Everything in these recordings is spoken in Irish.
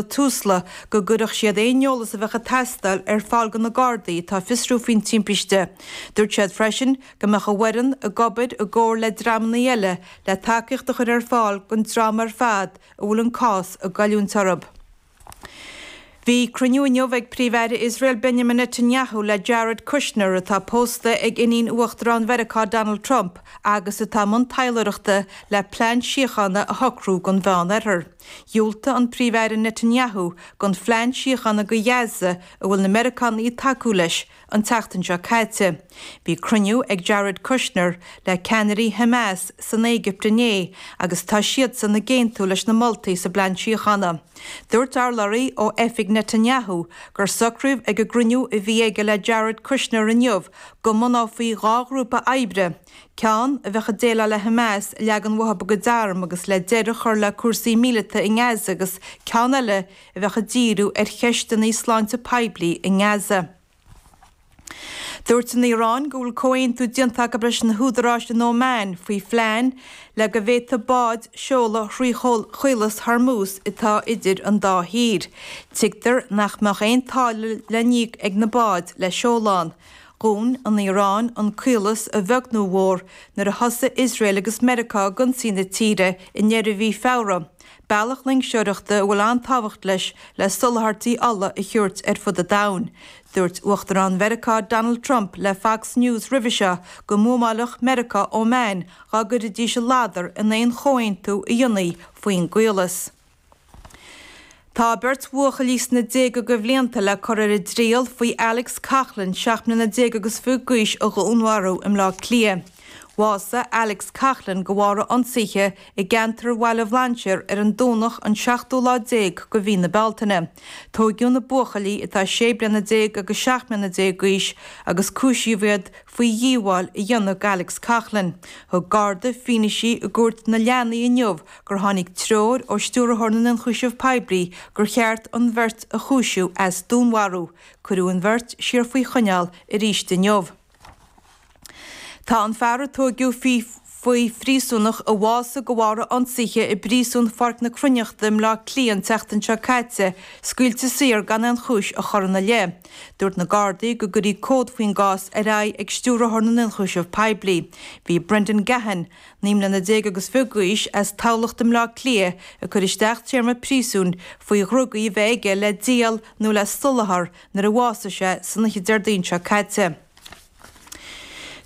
Tusla, go gcuirfeadh siad aon eolas a bheadh ag teastáil ar fáil go na Gardaí atá ag fiosrú faoin timpiste. Dúirt siad freisin go mbeadh a bhfoireann ag obair i gcomhar le dreamannaí eile le tacaíocht a chuir ar fáil don dream ar fad a bhfuil an cás ag goilliúint orthub. Bhí cruinniú inniu ag Príomh-Aire Iosrael Benjamin Netanyahu le Jared Kushner, atá pósta ag iníon Uachtarán Mheiriceá Donald Trump agus atá i mbun taidhleoireachta le plean síochána a shocrú don Mheán-Oirthear. Dhiúltaigh an Príomh-Aire Netanyahu don phlean síochána do Ghaza a bhfuil na Meiriceánaigh ag tacú leis, an tseachtain seo caite. Bhí cruinniú ag Jared Kushner le ceannairí Hamas san Éigipt inné agus tá siadsan ag aontú leis na moltaí sa bplean síochána. Dúirt urlabhraí ó oifig Netanyahu gur socraíodh ag an gcruinniú a bhí aige le Jared Kushner inniu go mbunófaí dhá ghrúpa oibre, ceann a bheadh ag déileáil le Hamas, leagan uathu a gcuid arm agus le deireadh a chur le cúrsaí míleata i nGaza agus ceann eile a bheadh ag díriú ar cheisteanna sláinte poiblí i nGaza. Dúirt an Iaráin go bhfuil comhaontú déanta acu leis na húdaráis in Óman faoi phlean le go bhféadfadh báid seoladh thrí Chaolas Hormuz atá idir an dá thír. Tuigtear nach mbeadh aon táille le n-íoc ag na báid le seoladh ann. Dhún an Iaráin an caolas a bheag nó a mhór nuair a thosaigh Iosrael agus Meiriceá ag ionsaí na tíre i ndeireadh mhí Feabhra, bealach loingseoireachta a bhfuil an-tábhacht leis le soláthairtí ola a thabhairt ar fud an domhain. Dúirt Uachtarán Mheiriceá Donald Trump le Fox News roimhe seo go mbuamáilfeadh Meiriceá Óman dhá gcuirfidís a ladar in aon chomhaontú a dhéanfaí faoin gcaolas. Tá beirt bhuachaillí sna déaga go bhlianta le cur ar a dtriail faoi Alex Coughlan, seacht mbliana déag agus fiche d'aois a dhúnmharú i mBleá Cliath. Bhásaigh Alex Coughlan go bharr a ionsaithe i gceantar Bhaile Bhlainséir ar an Domhnach an seachtú lá déag go Mhí na Bealtaine. Tóigeadh na buachaillí atá sé bliana déag agus seacht mbliana déag d'aois agus cúisíodh iad faoi dhíobháil a dhéanamh go Alex Coughlan. Thug Garda fianaise i gcúirt na leanaí inniu gur tháinig treoir ó Stiúrthóir na nIonchúiseamh Poiblí gur cheart an bheirt a chúisiú as dúnmharú, cuireadh an bheirt siar faoi choinneáil arís inniu. Tá an fear a tóigeadh faoi phríosúnach a bhásaigh de bharr a ionsaithe i bPríosún Pháirc na Cruithneachta i mBleá Cliath an tseachtain seo caite scaoilte saor gan aon chúis a chur ina leith. Dúirt na Gardaí go gcuirfí comhad faoin gcás ar aghaidh ag Stiúrthóir na nIonchúiseamh Poiblí. Bhí Brendan Gahan, Naoi mbliana déag agus fiche d'aois as Tamhlacht i mBleá Cliath ag cur isteach téarma príosúin faoi dhrugaí a bheith aige le díol nó le soláthar nuair a bhásaigh sé san oiche Déardaoin seo caite.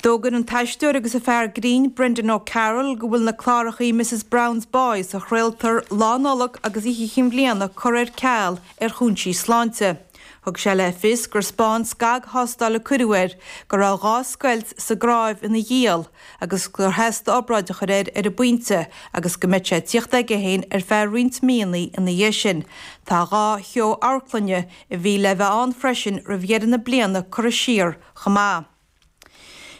D'fhógair an t-aisteoir agus an fear grinn Brendan O'Carroll go bhfuil na clárachaí Mrs Brown's Boys a chraoltar Lá Nollag agus Oíche Chinn Bhliana curtha ar ceal ar chúinsí sláinte. Thug sé le fios gur spáin scagthástáil a cuireadh air, go raibh dhá scoilt sa gcnáimh ina ghiall, agus gur theastaigh obráid a chur air ar an bpointe agus go mbeadh sé ag tíocht aige féin ar feadh roinnt míonnaí ina dhiaidh sin. Tá dhá sheó amharclainne a bhí le bheith ann freisin roimh dheireadh na bliana curtha siar chomh maith.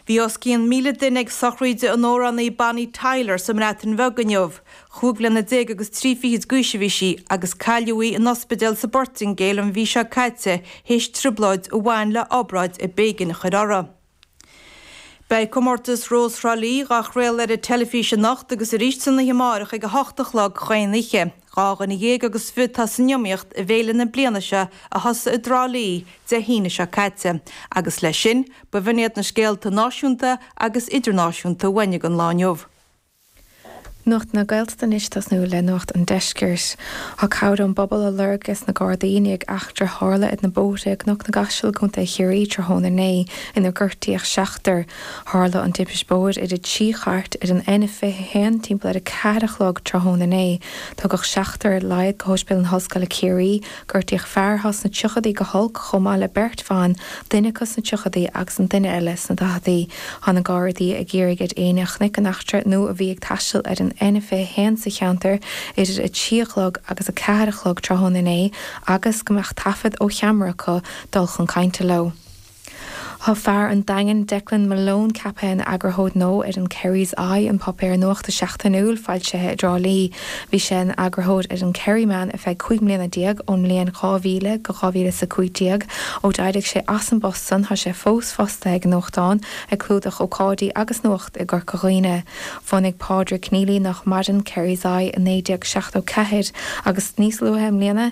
Bhí os cionn míle duine ag sochraid an amhránaí Bonnie Tyler sa mBreatain Bheag inniu. Chúig bhliana déag agus trí fichid d'aois a bhí sí agus cailleadh í in ospidéal sa bPortaingéil an mhí seo caite théis trioblóid a bhain le obráid a b'éigean a chur uirthi. Beidh Comórtas Rós Thrá Lí dhá chraoladh ar an teilifís anocht agus arís san oíche amárach ag a hocht a chlog chaon oíche. Dhá dhuine dhéag agus fiche atá san iomaíocht i bhféile na bliana seo a thosaigh i dTrá Lí Dé hAoine seo caite agus leis sin, b'in iad na scéalta náisiúnta agus idirnáisiúnta a bhain don lá inniu. Nuacht na Gaeltachta anois ag tosnú le Nuacht an Deiscirt. Tá cabhair ón bpobal á lorg ag na Gardaí i ndiaidh eachtra a tharla ar na bóithre i gCnoc na gCaiseal i gContae Chiarraí tráthnóna inné inar gortaíodh seachtar. Tharla an timpist bóthair idir trí chairt ar an N21 timpeall ar a ceathair a chlog tráthnóna inné. Tugadh seachtar ar laghad go hOspidéal na hOllscoile Ciarraí. Gortaíodh fear thá sna tríochadaí go holc chomh maith le beirt bhan, duine acu sna tríochadaí agus an duine eile sna daicheadaí. Tá na Gardaí ag iarraidh ar éinne a chonaic an eachtra nó a bhí ag taisteal ar an N21 sa cheantar idir a trí a chlog agus a ceathair a chlog tráthnóna inné agus go mbeadh taifead ó cheamara acu dul chun cainte leo. Thá fear an Daingin, Declan Malone, ceaptha ina Eagarthóir Gnó ar an Kerry's Eye, an páipéar nuachta seachtainiúil foilsithe i dTrá Lí. Bhí sé ina Eagarthóir ar an Kerryman ar feadh cúig mbliana déag, ón mbliain 2000 go dhá mhíle is a cúig déag. Ó d'éirigh sé as an bpost san thá sé fós fostaithe ag an nuachtán, ag clúdach ócáidí agus nuacht i gCorca Dhuibhne. Bhunaigh Pádraig Kennelly, nách maireann, Kerry's Eye i naoi déag seachtó ceathair agus níos luaithe i mbliana,